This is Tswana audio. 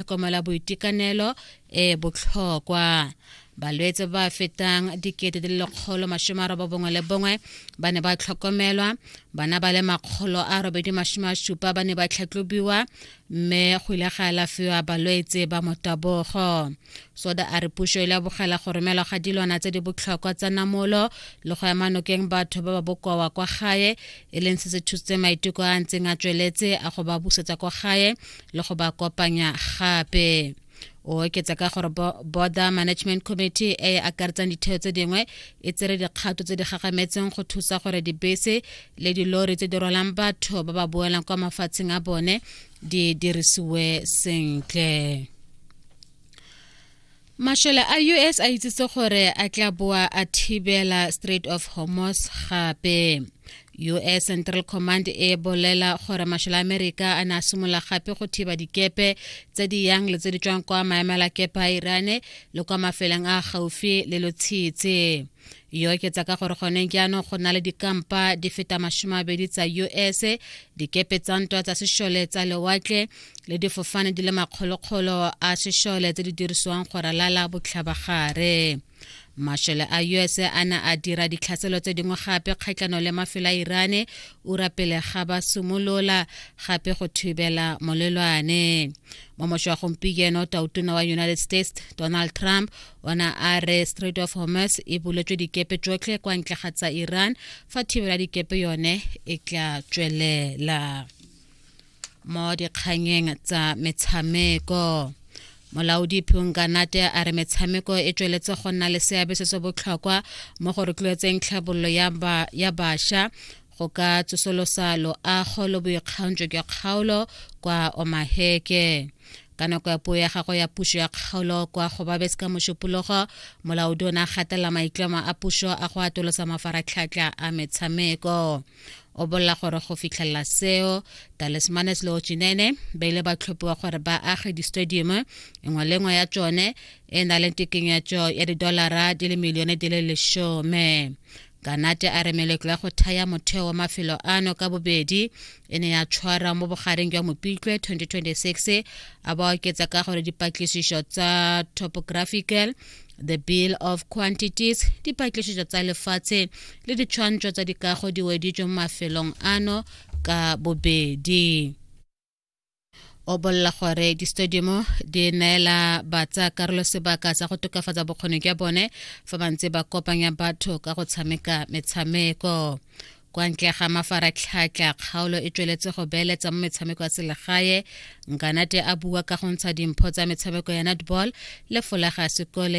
tlhokomela boitekanelo e botlhokwa balwetse ba fetang dikete di le lekgolo masome a roba bongwe le bongwe ba ne ba tlhokomelwa bana ba le makgolo a robedi masome a supa ba ne ba tlhatlobiwa mme go ile ga alafiwa balwetse ba motabogo soda a re puso e lebogela go romelwa ga dilwana tse di botlhokwa tsa namolo le go ema nokeng batho ba ba bokowa kwa gae e leng se se thusitse maiteko a ntseng a tsweletse a go ba busetsa kwa gae le go ba kopanya gape o oketsa ka gore border management committee e e akaretsang ditheo tse dingwe e tsere dikgato tse di gagametseng go thusa gore dibese le dilori tse di rwalang batho ba ba boelang kwa mafatsheng a bone di dirisiwe sentle Mashole a US a itsitse gore a tla boa a thibela Strait of Hormuz gape. US Central Command e bolela gore mashole a Amerika a ne a simolola gape go thiba dikepe tse di yang le tse di tswang kwa maemela kepe a Irane le kwa mafeleng a gaufi le lotshitse. e oketsa ka gore gone jaanong go na le dikampa di feta masome abedi tsa us dikepe tsa ntwa tsa sešole tsa lewatle le difofane di le makgolokgolo a sešole tse di dirisiwang go ralala botlhabagare mashole a us a ne a dira ditlhaselo tse dingwe gape kgatlhano le mafelo a irane ura pele ga ba simolola gape go thibela molelwane mo mošwa gompieno tautona wa united states donald trump ona a re strait of hormuz e buletswe dikepe tsotlhe kwa ntle ga tsa iran fa thibelo ya dikepe yone e tla tswelela mo dikganyeng tsa metshameko molaodi phunganate a re metshameko e tsweletse go nna le seabe se se botlhokwa mo go rotloetseng tlhabololo ya basha go ka tsosolosa loago lo boikgantsho jwa kgaolo kwa omaheke ka nako ya puo ya gagwe ya pušo ya kgaolo kwa go babes ka mošupologo molaodi o ne a gatelela maitlamo a pušo a go atolosa mafaratlhatlha a metshameko o bolela gore go fitlhelela seo talismanes le ochinene ba ile ba tlhophiwa gore ba age di-stadium nngwe le nngwe ya tsone e na le tekenyetso ya didolara di le milione di le lesome Kanate a re meletlo ya go thaya motheo wa mafelo ano ka bobedi e ne ya tshwara mo bogareng jwa Mopitlwe 2026 a ba oketsa ka gore dipatlisiso tsa topographical the bill of quantities dipatlisiso tsa lefatshe le ditshwantsho tsa dikago di weditswe mo mafelong ano ka bobedi o bolela gore di-stadiumo di neela batsa karolo sebaka sa go tokafatsa bokgoni jwa bone fa ba ntse ba kopanya batho ka go tshameka metshameko kwa ntle ga mafaratlhatlha kgaolo e tsweletse go beeletsa mo metshameko ya selegae nkanate a bua ka go ntsha dimpho tsa metshameko ya netball le folaga sekole